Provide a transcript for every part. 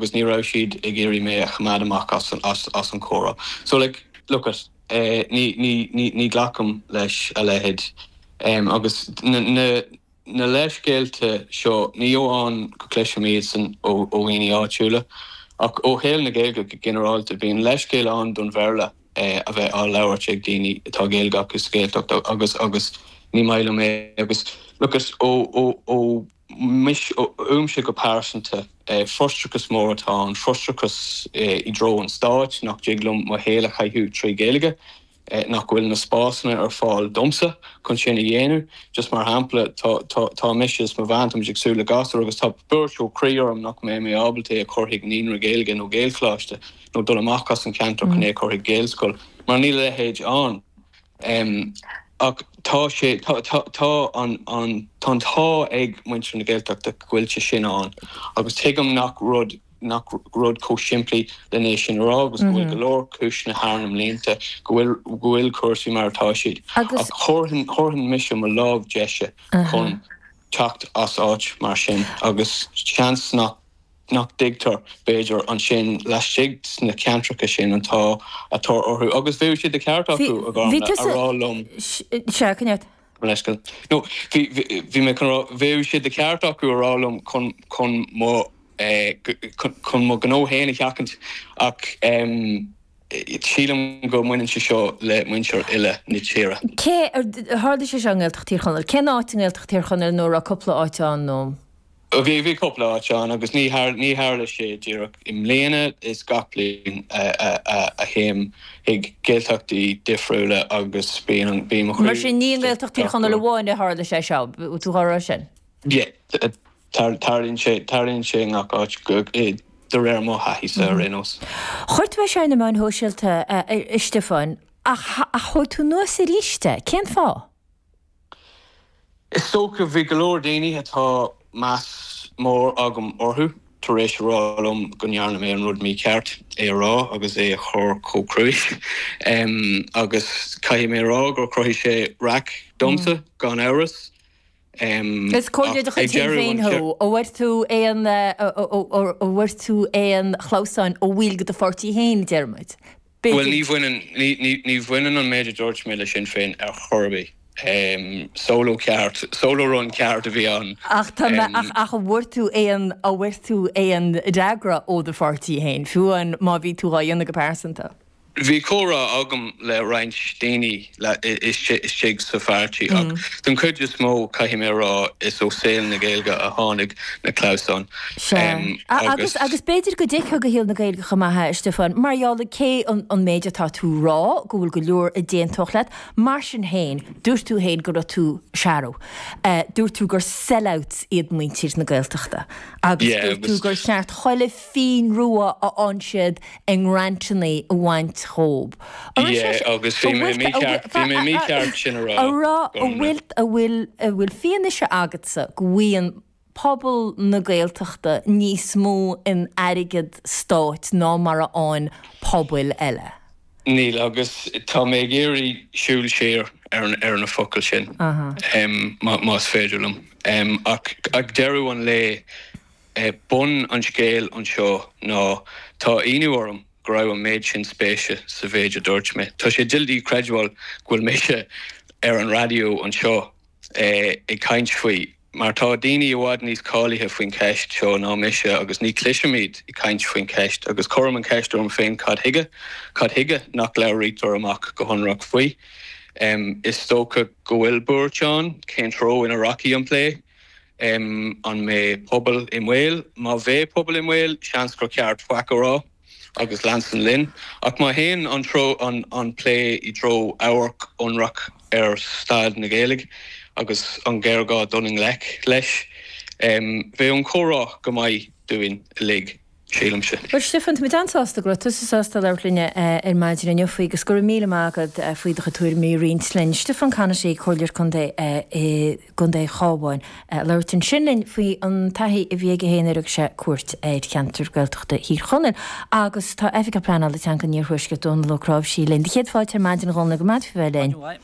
agus ní raibh siad ag iarraidh mé a choimeád amach as an chomhrá so like look it ní ghlacaim leis a leithéid agus na leithscéalta seo ní amháin go gcloisimse iad san ó dhaoine áitiúla ach ó shaol na Gaeilge go ginearálta bíonn leithscéal ann don Bhéarla a bheith á labhairt ag daoine atá Gaeilge acu sa Ghaeltacht agus agus ní maith liom é agus look it ó Uaimse go pearsanta, frustrachas mór atá ann, frustrachas i dtreo an stáit nach dtig liom mo shaol a chaitheamh trí Ghaeilge, nach bhfuil na spásanna ar fáil domsa chun sin a dhéanamh. Just mar shampla, tá mise is mo bhean, táimid ag súil le gasúr agus tá buaireamh croí orm nach mbeidh mé ábalta é a chur chuig naíonra Gaeilge nó Gaelcholáiste nó dul amach as an cheantar chun é a chur chuig Gaelscoil mar níl a leithéid ann. em ach tá sé tá tá tá an an tá an t-ádh ag muintir na Gaeltachta go bhfuil sé sin ann agus tuigim nach rud nach rud chomh simplí len é sin a rá agus go bhfuil go leor cúiseanna thar na mblianta go bhfuil go bhfuil cúrsaí mar atá siad ach thabharfainn thabharfainn mise mo lámh deise chun teacht as áit mar sin agus seans nach nach dtuigtear, b'fhéidir, ansin laistigh sna ceantracha sin an t-ádh atá orthu agus bheadh sé de cheart acu a rá liom. No, bhí, bhí mé chun rá, bheadh sé de cheart acu a rá liom chun, chun mo, chun, chun mo ghnó fhéin a sheachaint ach sílim go mbaineann sé seo le muintir uile na tíre. Cé, tharla sé seo i nGaeltacht Thír Chonaill, cén áit i nGaeltacht Thír Chonaill nó a raibh cúpla áit ann nó? Bhí, bhí cúpla áit ann agus ní, ní tharla sé díreach i mbliana, is gach bliain a théim chuig Gaeltachtaí difriúla agus bíonn, bíonn mo chroí. Mar sin, ní i nGaeltacht Thír Chonaill amháin a tharla sé seo, tú dhá rá sin? Yeah, tarlaíonn sé, tarlaíonn sé i ngach áit de réir mo thaithíse ar aon nós. Chuir tú é seo ar na meáin shóisialta, a Stiofáin, ach thóg tú anuas aríst é, cén fáth? Is dócha, bhí go leor daoine atá meas mór agam orthu tar éis a rá liom go ndearna mé an rud mícheart, é a rá agus é a chur chomh cruinn. Agus caithfidh mé a rá gur chruthaigh sé raic domsa, gan amhras. Is comhairleoir de chuid Shinn Féin thú. An bhfuair tú aon, an bhfuair tú aon chlamhsáin ó bhaill de do pháirtí féin, i dtaobh an ruda? Bhuel, ní bhaineann, ní bhaineann an méid a dúirt mé le Sinn Féin ar chor ar bith. Solo ceart, solo run ceart a bhí ann. Ach tá, ach, ach an bhfuair tú aon, an bhfuair tú aon fhreagra ó do pháirtí féin, fiú amháin má bhí tú dhá dhéanamh go pearsanta? Bhí comhrá agam le roinnt daoine. la istigh sa pháirtí ach den cuid is mó caithfidh mé a rá is ó saol na Gaeilge a tháinig na clamhsáin Sea. em Agus agus. agus b'fhéidir go dtuigfeá do shaol na Gaeilge chomh maith, a Stiofáin, mar gheall ar cé an an méid atá tú rá go bhfuil go leor a d'aontódh leat. Mar sin féin, dúirt tú féin go raibh tú searbh. Eh dúirt tú gur sellouts iad muintir na Gaeltachta agus yeah dúirt tú agus. gur cheart chuile phingin rua a fhaigheann siad i ngrantannaí a bhaint dhóibh. A rá, Sea, agus bhí mé mícheart, bhí mé mícheart sin a rá, a rá, an bhfuil, an bhfuil, an bhfuil fianaise agatsa go bhfaigheann pobal na Gaeltachta níos mó in airgead stáit ná mar a fhaigheann pobail eile? Níl, agus tá mé ag iarraidh siúl siar ar an, ar na focail sin, más féidir liom, ach ag deireadh an lae, é bun an scéil anseo ná tá ionadh orm go raibh an méid sin spéise sa mhéid a dúirt mé. Tá sé doiligh creidbheáil go bhfuil mise ar an raidió anseo ag caint faoi, mar tá daoine i bhfad níos cáilithe faoin cheist seo ná mise agus ní chloisim iad ag caint faoin cheist agus cuirim an cheist orm féin cad chuige? Cad chuige nach labhraítear amach go hionraic faoi? Is dócha go bhfuil buairt ann cén treo ina rachaidh an plé? M an mbeidh pobal i mbaol? Má bheidh pobal i mbaol, seans gur ceart faic a rá agus leanstan linn. Ach má théann an treo an an plé i dtreo amharc ionraic ar staid na Gaeilge agus an géarghá dul i ngleic leis, bheadh an comhrá go maith dúinn uilig. sílimse. Bhuel, a Stiofáin, tá muid an-sásta go raibh tusa sásta labhairt linn ar maidin inniu faoi agus go raibh míle maith agat faoi do chuid tuairimí a roinnt linn. Stiofán Conaty, Comhairleoir Contae i gContae Chabháin, ag labhairt ansin linn faoi an taithí a bhí aige féin nuair a thug sé cuairt ar cheantar Gaeltachta Thír Chonaill. Agus tá Oifigeach Pleanála Teanga an Iarthuaiscirt, Dónall Ó Cnáimhsí, linn. Do chéad fáilte ar maidin, a Dhónaill, go raibh maith agat faoi bheith linn.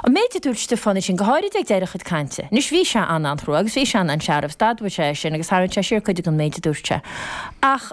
An méid a dúirt Stiofán ansin, go háirid ag deireadh a chuid cainte. Anois, bhí sé an-an-chrua agus bhí sé an-an-searbh, is d'admhaigh sé é sin agus tharraingt sé siar cuid den méid a dúirt sé. Ach.